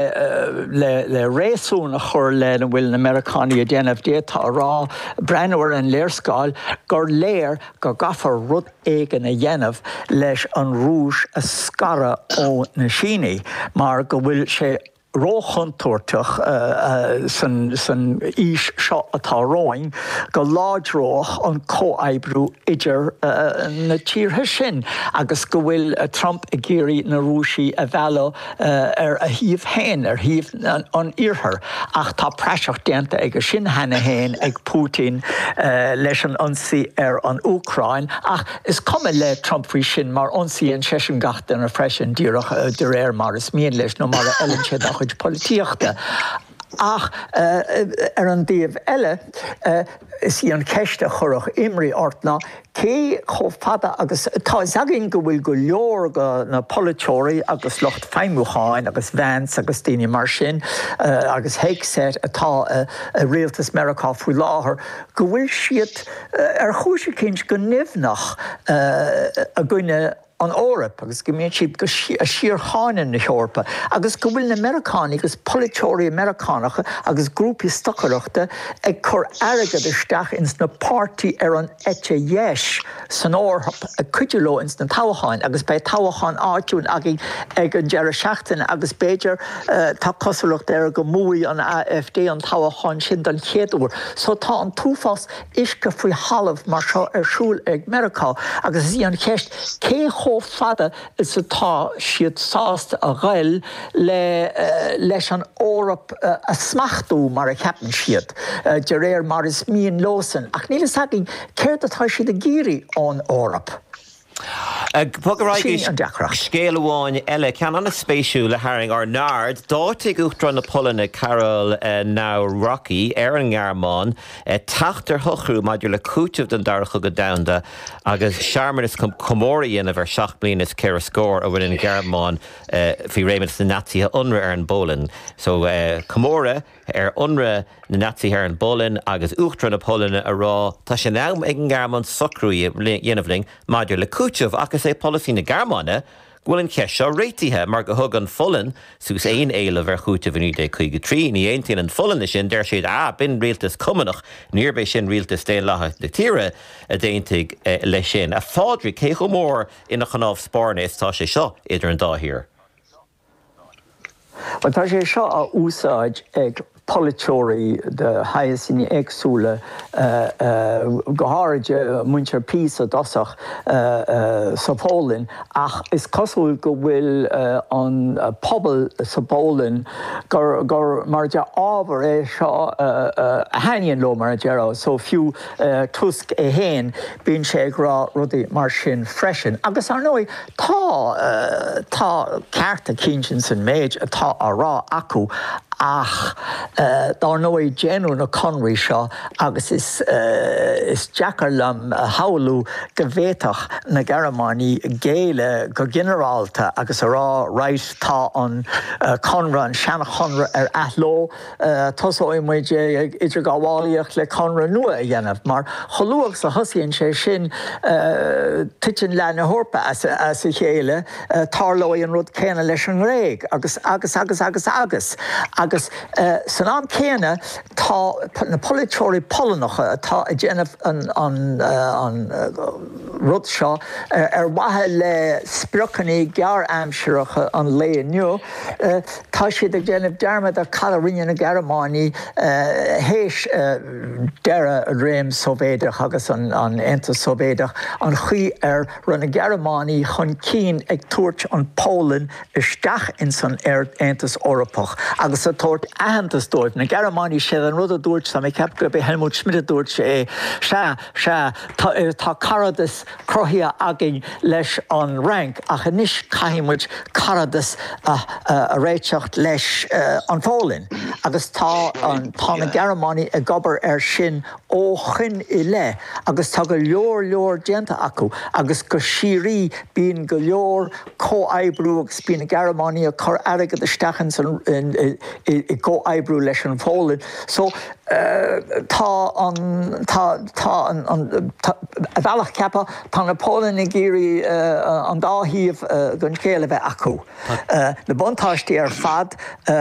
Le réasún a chur lena bhfuil na Meiriceánaigh a dhéanamh, d'fhéadfá a rá, breathnú ar an léarscáil, gur léir go gcaithfear rud éigin a dhéanamh leis an Rúis a scaradh ó na Sínigh mar go bhfuil sé róchontúirteach san aois seo atá romhainn go láidreodh an comhoibriú idir na tíortha sin agus go bhfuil Trump ag iarraidh na Rúisigh a mhealladh ar a thaobh féin, ar thaobh an Iarthar, ach tá praiseach déanta dhe sin cheana féin ag Putin leis an ionsaí ar an Úcráin, ach is cuma le Trump faoi sin mar ionsaíonn seisean gach duine freisin, díreach de réir mar is mian leis nó mar a fheileann sé dá chuid polaitíochta. Ach ar an dtaobh eile, is í an cheist a chuirfeadh imní ort ná cé chomh fada agus. Tá a fhios againn go bhfuil go leor de na polaiteoirí agus lucht feidhmiúcháin agus Vance agus daoine mar sin agus Hegseth atá i rialtas Meiriceá faoi láthair, go bhfuil siad ar chúis eicínt go nimhneach i gcoinne an Eoraip agus go mbíonn siad ag síorcháineadh na hEorpa agus go bhfuil na Meiriceánaigh agus polaiteoirí Meiriceánacha agus grúpaí stocaireachta ag cur airgead isteach ins na páirtithe ar an eite dheis san Eoraip ag cuidiú leo ins na toghcháin agus beidh toghchán áitiúil againn ag an deireadh seachtaine agus b'fhéidir tá cosúlacht air go mbuafaidh an AfD an toghchán sin don chéad uair so tá an t-uafás uisce faoi thalamh mar seo ar siúl ag Meiriceá agus is í an cheist cé chomh fada is atá siad sásta a ghoil le leis an Eoraip a smachtú mar a cheapann siad, de réir mar is mian leosan, ach níl a fhios againn céard atá siad ag iarraidh ón Eoraip. Sin an deacracht. Scéal amháin eile, ceann an-spéisiúil, a tharraing ár n-aird. D'áitigh Uachtarán na Polainne, Karol Nawrocki, ar an nGearmáin teacht ar shocrú maidir le cúiteamh don Dara Cogadh Domhanda agus searmanas chun comóradh a dhéanamh ar sheacht mbliana is ceithre scór ó rinne an Ghearmáin, faoi réimeas na Naitsithe, ionradh ar an bPolainn. So, comóradh. ar ionradh na Naitsithe ar an bPolainn agus Uachtarán na Polainne a rá, Tá sé in am ag an nGearmáin socrú a dhéanamh linn maidir le cúiteamh, ach is é polasaí na Gearmáine go bhfuil an cheist seo réitithe, mar gur thug an Pholainn suas aon éileamh ar chúiteamh i 1953. Ní aontaíonn an Pholainn leis sin, deir siad, Ah, b'in rialtas Cumannach, níorb é sin rialtas daonlathach na tíre a d'aontaigh leis sin. A Phádraig, cé chomh mór ina chnámh spairne is atá sé seo idir an dá thír? Tá sé seo á úsáid ag polaiteoirí de shaghas éagsúla, go háirithe muintir PiS i dtosach, sa Pholainn, ach is cosúil go bhfuil an pobal sa bPolainn, gur mar de ábhar é seo a thaitníonn leo, mar a déarfá, so fiú Tusk é féin, Bíonn sé ag rá rudaí mar sin freisin. Agus, ar ndóigh, tá, tá ceart eicínt ins an méid atá á rá acu ach, ar ndóigh, déanadh na conraí seo agus is, is deacair liom a shamhlú go bhféadfadh na Gearmánaigh géilleadh go ginearálta agus a rá, right, tá an conradh, an seanchonradh ar athló. Tosóidh muid ag idirghabhálaíocht le conradh nua a dhéanamh mar chomh luath agus a thosaíonn sé sin titeann leath na hEorpa as a chéile, tarlóidh an rud céanna leis an nGréig agus, agus, agus, agus, agus. Agus san am céanna tá na polaiteoirí Polannacha atá ag déanamh an rud seo ar mhaithe le spriocanna gearr-aimsireacha an lae inniu, Tá siad ag déanamh dearmad ar cad a rinne na Gearmánaigh théis deireadh an réim Sóivéideach agus an Aontas Sóivéideach, an chaoi ar raibh na Gearmánaigh chun cinn ag tabhairt an Pholainn isteach ins an Aontas Eorpach agus ag tabhairt aitheantas dóibh. Na Gearmánaigh, sé an rud a dúirt, tá mé ag ceapadh gurb é Helmut Schmidt a dúirt é, sea, sea, tá caradas, cruthaithe againn leis an Fhrainc ach anois caithfidh muid caradas a réiteach leis an Pholainn agus tá na Gearmánaigh ag obair air sin ó shoin i leith agus tá go leor leor déanta acu agus go síoraí bíonn go leor comhoibriú agus bíonn na Gearmánaigh ag cur airgead isteach ins an i gcomhoibriú leis an Pholainn so tá an tá tá an an a bhealach ceaptha tá na Polainn ag iarraidh an dá thaobh den scéal a bheith acu na buntáistí ar fad a